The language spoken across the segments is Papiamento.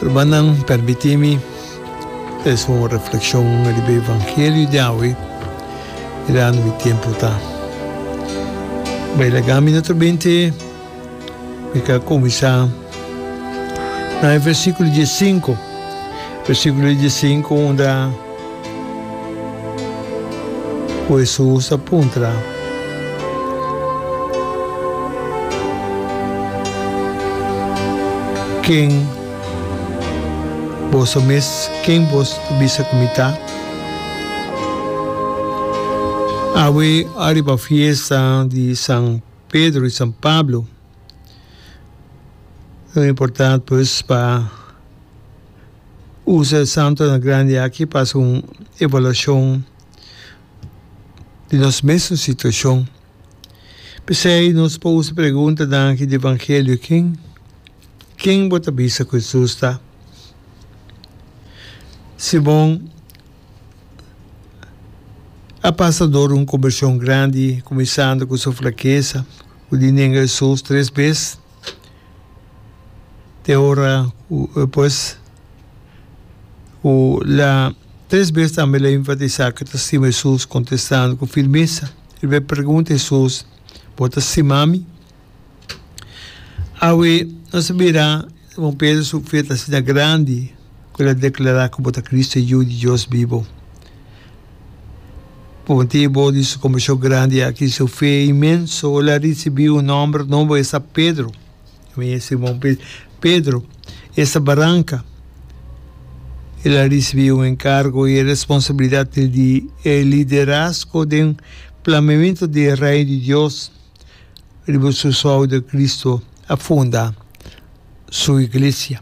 Rumannan, permití mi trese un reflekshon riba e evangelio di awe, mirando mi tempu ta bai laga. Mi naturalmente mi ta kuminsá na e versíkulo diesinko, versíkulo diesinko unda. Ku Hesus a puntra, Ken Bo Ta Mes? Ken Bos Ta Bisa Ku Mi Ta? Awe ariba fiesta di San Pedro i San Pablo, lo importante pues pa. usa e santonan grandi aki pa hasi un evaluashon di nos mes un situashon. P'esei nos por usa e preguntanan aki di Evangelio, Ken ken bo ta bisa ku Jesus ta? Simon a pasa dor un kombershon grandi, kuminsando ku su flakesa, ku di nenga Jesus tres bes. te ora cu eh, pues cu la tres bes tambe la enfatisa que ta stima Hesus contestando cu firmesa. El be pregunta Hesus, Bo ta stima mi? Awe nos a bira Simon Pedro su fe ta asina grandi cu el a declara cu bo ta Cristo, Yu di Dios bibo. Por motibo di su compashon grandi aki y su fe inmenso, el a ricibi un nomber nobo, es ta Pedro. Mi e Simon Pe-, Pedro, es ta baranca. El a ricibi un encargo y e responsabilidad di di e liderazgo den plameamento di e Reino di Dios riba su souder Cristo a funda su Iglesia.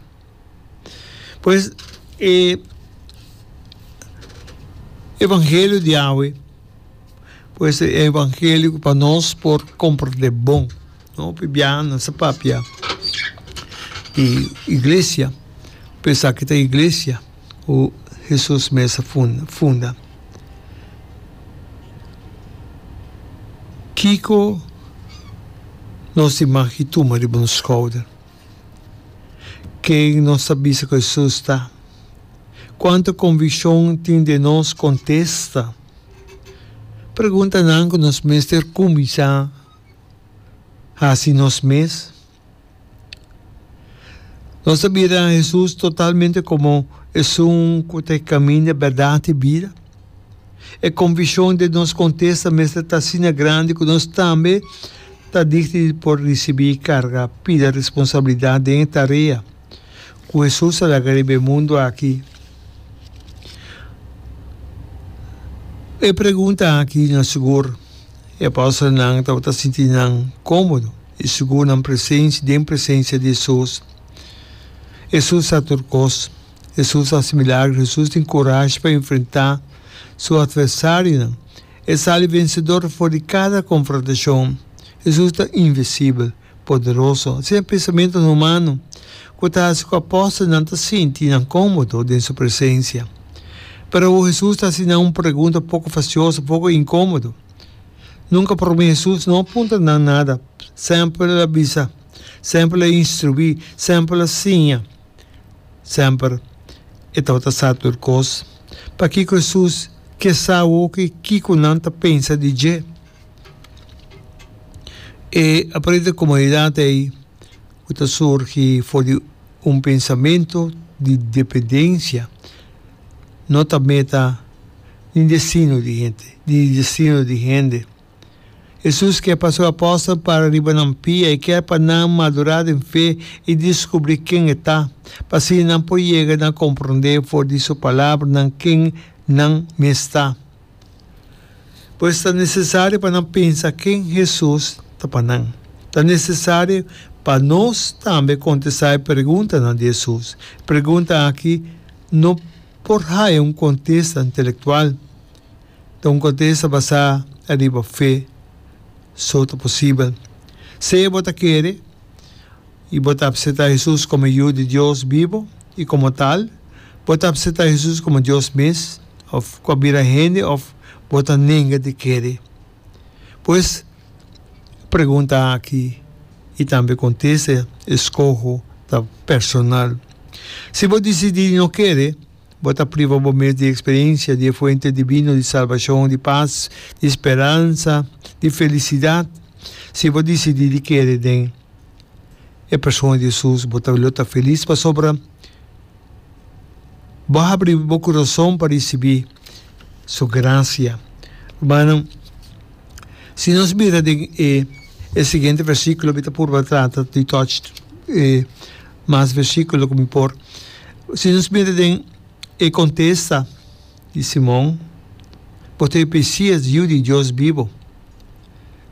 Pues e evangelio di awe pues e evangelio ku pa nos por komprende bon no pibia nan sa papia di iglesia pero esaki ta iglesia ku Hesus mes a funda kiko nos tin mag ki tuma riba nos skouder. Ken nos ta bisa ku Hesus ta? Kuantu konvikshon tin den nos? Kontesta preguntanan ku nos mester kuminsá hasi nos mes. Nos ta bira Hesus totalmente komo Esun ku ta e Kaminda, Bèrdat i Bida? E konfishon den nos kontesta mester ta asina grandi ku nos tambe ta digni di por risibí e karga pida responsabilidat den e tarea ku Hesus a laga riba e mundu aki. E pregunta aki no sigur. E apòstelnan tabata sinti nan kómodo i sigur nan den presensia di Hesus. Hesus sa tur kos. Hesus hasi milagro. Hesus tin kurashi pa enfrentá su atversarionan. E sali vensedor afó di kada konfrontashon. Hesus ta invisibel, poderoso. Sin e pensamentunan humano ku ta hasi ku apòstelnan ta sinti nan kómodo den su presensia. Pero awor Hesus ta hasi nan un pregunta poko fasioso, poko inkómodo. Nunka promé Hesus no a puntra nan nada. Sempel el a bisa. Sempel el a instruí. Sempel el a siña. Semper e tabata sa tur kos. Pakiko Hesus ke sa hopi kiko nan ta pensa di dje? E aparehe den komunidat ei ku ta surgi for di un pensamentu di dependensia no ta meta ni destino di hende, di destino di hende. Hesus ke pa su apòstel para riba nan pia. E kier pa nan madurá den fe i diskubrí ken e ta, pa asina nan por yega na komprondé for di su palabranan ken nan mes ta. Pues ta nesesario pa nan pensa ken Hesus ta pa nan. Ta nesesario pa nos tambe kontestá e preguntanan di Hesus. E pregunta aki no por haya un kontesta intelektual. Ta un kontesta basá ariba fe, so ta posibel. Sea bo ta kere i bo ta apseptá Hesus komo e Yu di Dios bibu i komo tal, bo ta apseptá Hesus komo Dios mes, òf ku a bira hende òf bo ta nenga di kere. Pues, e pregunta aki i tambe e kontesta e skoho ta personal. Si bo disidí di no kere, Bo ta priva bo mes di eksperensia di e fuente divino di salbashon, di pas, di speransa, di felisidat, si bo disidí di kere den e persona di Hesus. Bo ta lo ta felis pasobra bo a habri bo kurason pa risibí Su grasia. Rumannan, si nos bira den e siguiente versíkulo mi ta purba trata di tòch. mas versíkulo ku mi por. Si nos mira den e kontesta di Simon, bo ta e Mesias, Yu di Dios bibu.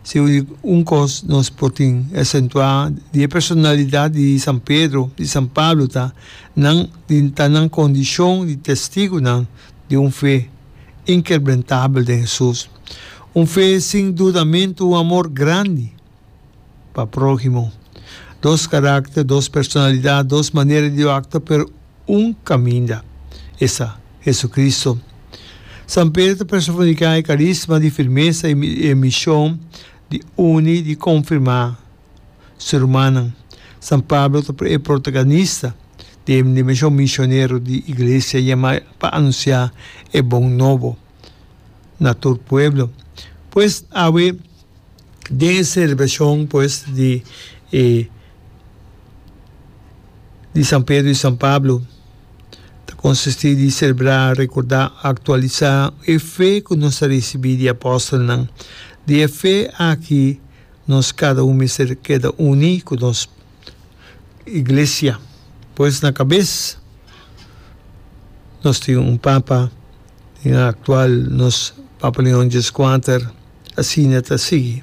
Si un kos nos por tin e asentuá di e personalidat di San Pedro, di San Pablo ta nan di ta nan kondishon di testigunan di un fe inkerbrentabel den Hesus, un fe sin dudamentu, un amor grandi. pa próhimo. Dos karákter, dos personalidat, dos manera di aktua pero un kaminda, esa, Hesukristu. San Pedru ta persofoniká e karísma di firmesa i e mishon di uni, di konfirmá su rumannan. San Pablo ta e protagonista di e dimensho misionero di Iglesia yamá pa anunsiá e bon nobo. na tur pueblo. Pues awe den e celebracion pues di e di San Pedro y San Pablo ta consisti di celebra, recorda, actualisa e fe cu nos a ricibi di apostelnan. Di e fe aki nos cada un mester keda uni cu nos. iglesia pues na cabes nos tin un papa y na actual nos papa leon dies cuater asina ta sigui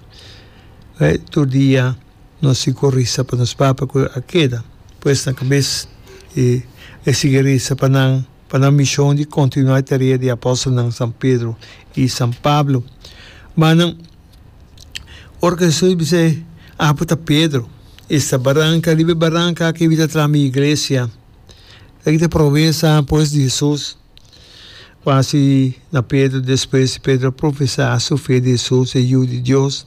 tur dia nos tin cu risa pa nos papa cu a keda pues na cabes y e sigui risa pa nan. pa nan mishon di kontinuá e tarea di apòstelnan San Pedro i San Pablo. Ma nan, ora ku Hesus bis'é, Apu ta Pedro. Esta baranka, riba e baranka aki mi ta traha mi iglesia. Esaki ta promesa pues di Hesus ku hasi na Pedro. Despues Pedro a profesá su fe di Hesus, e Yu di Dios.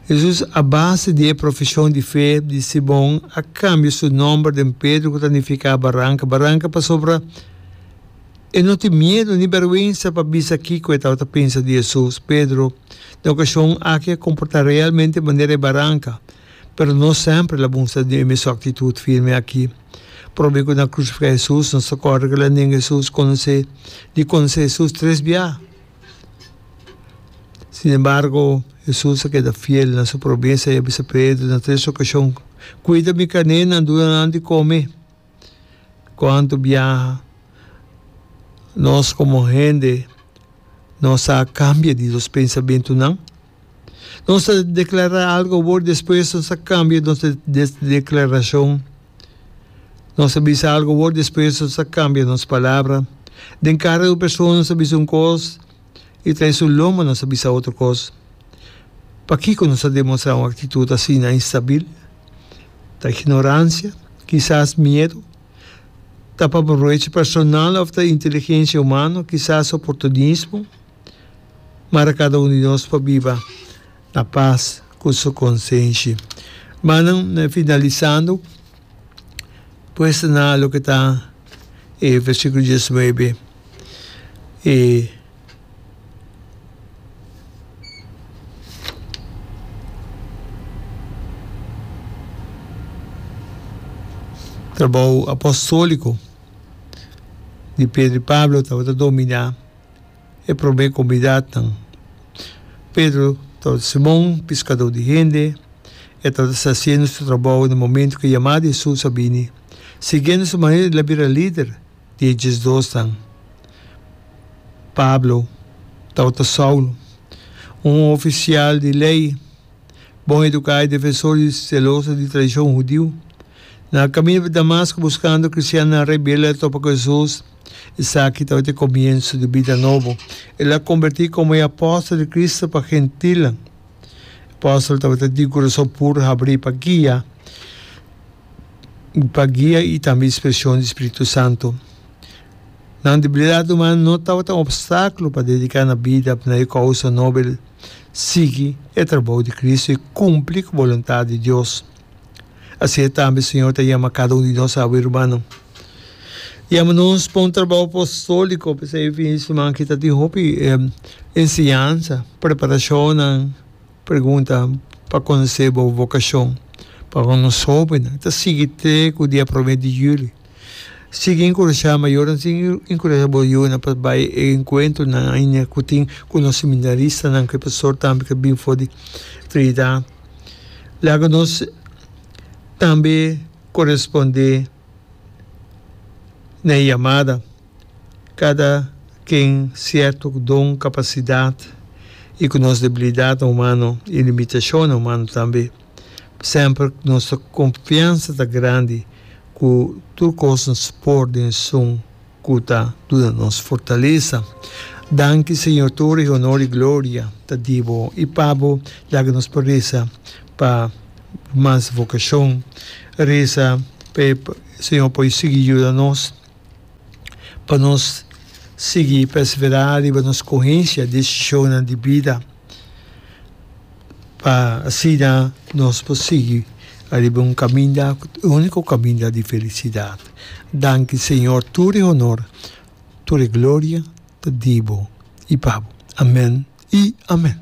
Hesus a base di e profesion di fe di Simon a cambia su nomber den Pedro cu ta nifica Baranca Baranca pasobra e no tin miedo ni berwensa pa bisa kico e tabata pensa di Hesus. Pedro den ocasion aki a comporta realmente manera e baranca, pero no sempre el a mustra e mesun actitud firme aki. Probe cu nan crucifica Hesus nos ta corda cu el a nenga Hesus conoce di conoce Hesus tres bia. Sin embargo, Hesus a keda fiel. Na su promes, e a bisa Pedro na tres okashon, Kuida mi kanénan, duna nan di kome. Ku anto biaha, nos komo hende, nos a kambia di nos pensamentunan. Nos ta deklará algu awor, despues nos ta kambia nos deklarashon. Nos ta bisa algu awor, despues nos ta kambia nos palabra. Den kara di un persona nos ta bisa un kos i ta den su lomba nos ta bisa otro kos. Pakiko nos ta demostrá un aktitut asina instabil? Ta ignoransia? Kisas miedu? Ta pa provecho personal òf ta inteligensia humano? Kisas oportunismo? Mara kada un di nos por biba na pas ku su konsenshi. Manan, finalisando, puesta na loke ta e versíkulo diesnuebe, e trabou apostóliko di Pedro i Pablo tabata dominá. e promé konbidatnan. Pedro tabata Simon, piskadó di hende. E tabata sa asiendo su trabou na momentu ku e yamá di Hesus a bini. Siguiendo su maestro el a bira lider di e diesdosnan. Pablo tabata Saulu, un ofisial di lei, bon eduká i defensor di seloso di tradishon hudiu. Na kaminda pa Damasko buskando kristiannan rebelde a topa ku Hesus. Esaki tabata e komienso di bida nobo. El a kombertí komo e apòstel di Kristu pa gentilnan. E apòstel tabata di kurason puru habrí pa guia pa guia i tambe inspirashon di spiritu santu. Nan debilidat uman no tabata un opstákulo pa dediká nan bida na e kousa nobel, sigui e trabou di Kristu i kumpli ku boluntat di Dios. Asina tambe Señor ta yama cada un di nos awe rubanan. Yama nos pa un trabao apostolico, p'esei e fin di siman aki ta tin hopi enseñansa, preparacionnan, pregunta pa conoce bo vocacion. Pa con nos hobennan ta sigui te cu dia prome di juli. Sigui encurasha mayornan, sigui encurasha bo yunan pa bay e encuentronan cu tin cu nos seminaristanan cu e pastor tambe cu a bin for di Trinidad. Laga nos tambe koresponde na e yamada. Kada ken sierto ku don, kapasidat i ku nos debilidatnan humano i limitashonnan humano tambe. Semper nos ta konfiansa ta grandi ku tur kos nos por den esun. cu ta duna nos fortalesa. Danki Señor Toeri honor y gloria ta di bo y pa bo laga nos pa resa pa mas vocacion resa pa e Señor por sigui yuda nos pa nos sigui persevera riba nos scogencia decisionan di bida. Pa asina nos por sigui ariba un kaminda, uniko kaminda di felisidat. Danki Señor, tur e honor, tur e gloria ta di bo i pa bo. Amen i amen.